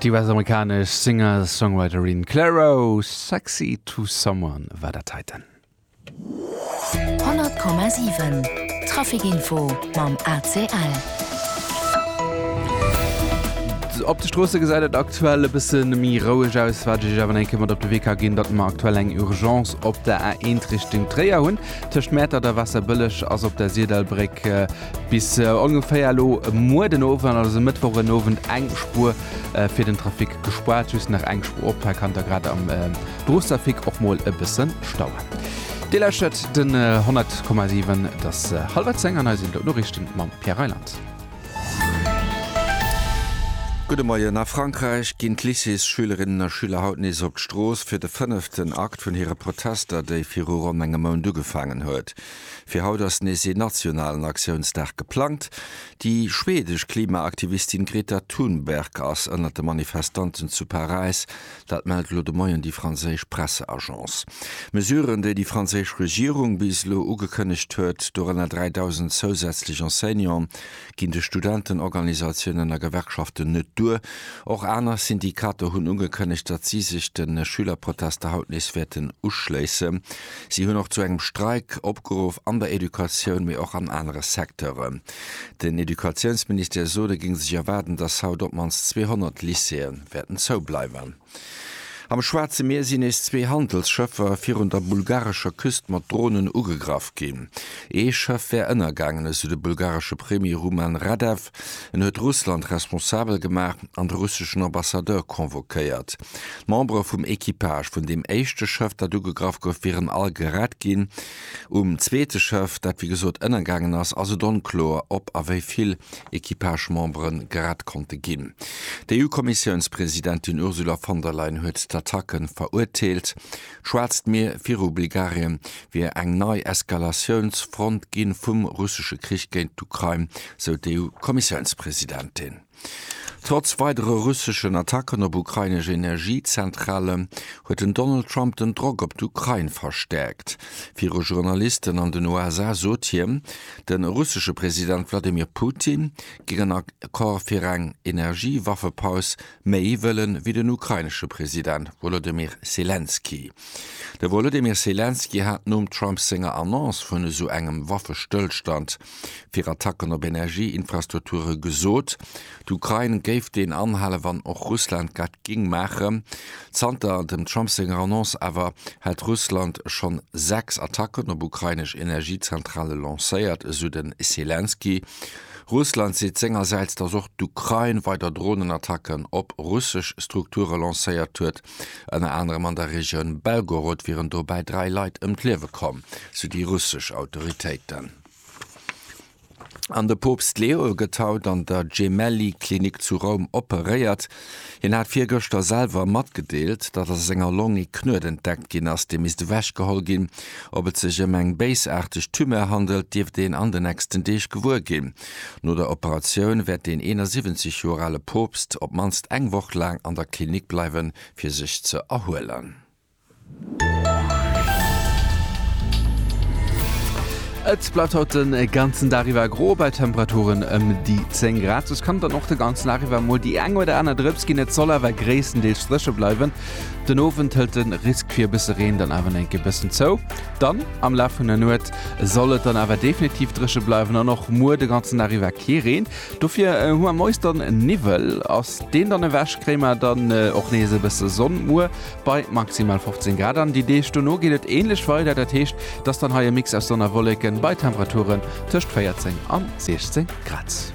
Déi US-amerikanesch Singer-Songwriterin Clairo, Sexy To Someone war dat heiten. 100,7 Traficinfo mam ACL. Op de Stroosse gesäit et aktuell e bësse méi roueg aus, wat ech Iech awer enke mat op de Wee ka ginn, datt mer aktuell eng Urgence op der A1 Richtung Tréier hunn. Tëscht Mäertert a Waasserbëlleg ass op der Sirdallbréck. Bis ongeféier elo muer den Owend, also Mëttwoch en Owend, eng Spuer fir den Trafic gespaart, just nach eng Spuer op, hei kann da grad am Berufstrafic och mol e bësse stauen. Dir lauschtert den 100,7, et ass hallwer 10 an hei sinn d'Lot Noriichten mam Pierre Reyland. Gudde Moien, A Frankräich ginn d'Lycéesschülerinnen a schüler haut nees op d'Strooss fir de fënneften Akt vun hire Protester, déi viru ronn engem Mount ugefaangen huet. Fir haut ass nees ee nationalen Aktiounsdag geplangt. Déi schwedesch Klimaaktivistin Greta Thunberg ass ënnert de Manifestanten zu Paräis. Dat mellt elo de Moien déi franséisch Presseagence. Mesuren, déi déi franséisch Regierung bis elo ugekënnegt huet, dorënner 3.000 zousätzlech Enseignanten, ginn de Studentenorganisatiounen a Gewerkschaften net duer. Och aner Syndikater hunn ugekënnegt, datt si sech de Schülerprotester haut nees wäerten uschléissen. Si hunn och zu engem Streik opgeruff an der Educatioun, mee och an anere Secteuren. Den Educatiounsministère sot, e géing sech erwaarden, datt haut op d'mannst 200 Lycéeë wäerten zoubleiwen. Am Schwaarze Mier sinn nees zwee Handelsschëffer virun der bulgarescher Küst mat Dronen ugegraff ginn. Ee Schëff wär ënnergaangen, esou de bulgaresche Premier Rumen Radev. En huet Russland responsabel gemaach an de russeschen Ambassadeur convoquéiert. D'Membere vum Equipage vun deem éischte Schëff, dat ugegraff gouf, wieren all gerett ginn. Um zweete Schëff, dat wéi gesot ënnergaangen ass, ass et onkloer, ob a wéi vill Equipage-Membere gerett konnte ginn. D'EU-Kommissiounspresidentin Ursula von der Leyen huet d'Attacke verurteelt. D'Schwaarzt Mier viru Bulgarien wier eng nei Eskalatiounsfront gi vum russesche Krich géint d'Ukrain, sou d'EU-Kommissiounspresidentin. Trotz weidere russeschen Attacken op ukrainesch Energiezentrale huet den Donald Trump den Drock op d'Ukrain verstäerkt. Viru Journalisten an den USA sot hien, de russesche President Wladimir Putin géing en Accord fir eng Energiewaffepaus méi wëllen, wéi den ukrainesche President Wolodymyr Selenskyj. De Wolodymyr Selenskyj hat nom Trump senger Annonce vun esou engem Waffestëllstand fir Attacken op Energieinfrastrukture gesot, d'Ukrain géif deen anhalen, wann och Russland dat géing maachen. Zanter dem Trump senger Annonce awer hätt Russland schonn sechs Attacken op ukrainesch Energiezentrale lancéiert, esou de Selenskyj. Russland seet sengersäits, datt och d'Ukrain weider Dronenattacken op russesch Strukture lancéiert huet. Ënner anerem an der Regioun Belgorod wieren dobäi dräi Leit ëm d'Liewe komm, sou déi russesch Autoritéiten. An de Poopst Leo gëtt haut an der Gemelli-Klinik zu Roum operéiert. Hien hat virgëschter selwer matgedeelt, datt a senger Long ee Knuet entdeckt ginn ass, dee misst ewechgeholl ginn. Ob et sech ëm eng béisaarteg Tumeur handelt, dierft een an den nächsten Deeg gewuer ginn. No der Operatioun wäert den 71 Joer ale Poopst op d'mannst eng Woch laang an der Klinik bleiwen, fir sech ze erhuelen. Et bleift haut den ganzen Dag iwwer gro bei Temperaturen ëm déi 10 Grad. Soss kann et dann och de ganzen Dag iwwer mol déi eng oder aner Drëps ginn. Et soll awer gréisstendeels dréche bleiwen. Den Owend hëlt de Risk fir e bësse Reen dann awer eng Kéier e bëssen zou. Dann am Laf vun der Nuet soll et dann awer definitiv dréche bleiwen an och muer de ganzen Dag iwwer kee Reen. Dofir hu mer moies dann Niwwel. Ass deen dann ewech, kréie mer dann och nees e bësse Sonn muer bei maximal 15 Grad. An déi Deeg dono geet et änlech weider, dat heescht, et ass dann hei e Mix aus Sonn a Wolleken bei Temperaturen tëscht 14 an 16 Grad.